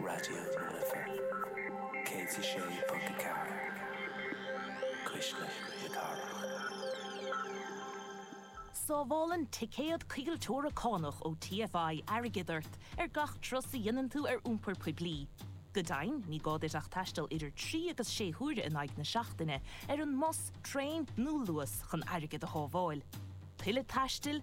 Raidió na Life 106.4, cuisle na cathrach. Sábhálann ticéad coigilteora cánach ó TFI airgead ort ar gach turas a dhéanann tú ar iompar poiblí. Go deimhin, ní gá duit ach taisteal idir trí agus sé huaire in aghaidh na seachtaine ar an mbus, traein nó Luas chun airgead a shábháil. Tuilleadh taistil?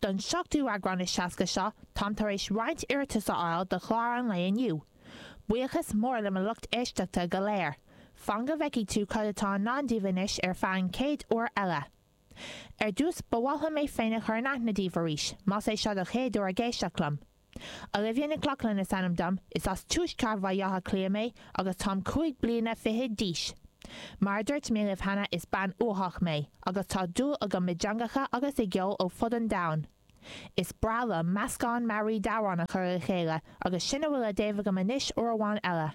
Don seachtú eagrán is seasca seo, táim tar éis roinnt iarratas a fháil do chlár an lae inniu. Buíochas mór le mo lucht éisteachta go léir. Fan go bhfeicfidh tú cad atá i ndán daoibh anois ar feadh an chéad uair eile. Ar dtús, ba mhaith liom mé féin a chur in aithne daoibh arís, más é seo do chéad uair ag éisteacht liom. Olivia Nic Lochlainn is ainm dom, is as tuaisceart Bhaile Átha Cliath mé agus táim cúig bliana fiche d'aois. Mar a dúirt mé libh cheana is bean uathach mé agus tá dúil agam i dteangacha agus i gceol ó fud an domhain. Is breá liom meascán mearaí d'amhráin a chur le chéile agus sin a bhfuil daoibh agam anois uair amháin eile.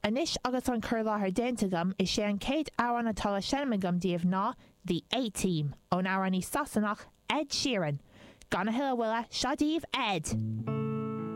Anois agus an cur i láthair déanta agam, is é an chéad amhrán atá le seinm agam daoibh ná The A-Team, ón amhránaí Sasanach Ed Sheeran! Gan a thuilleadh moille, seo daoibh Ed!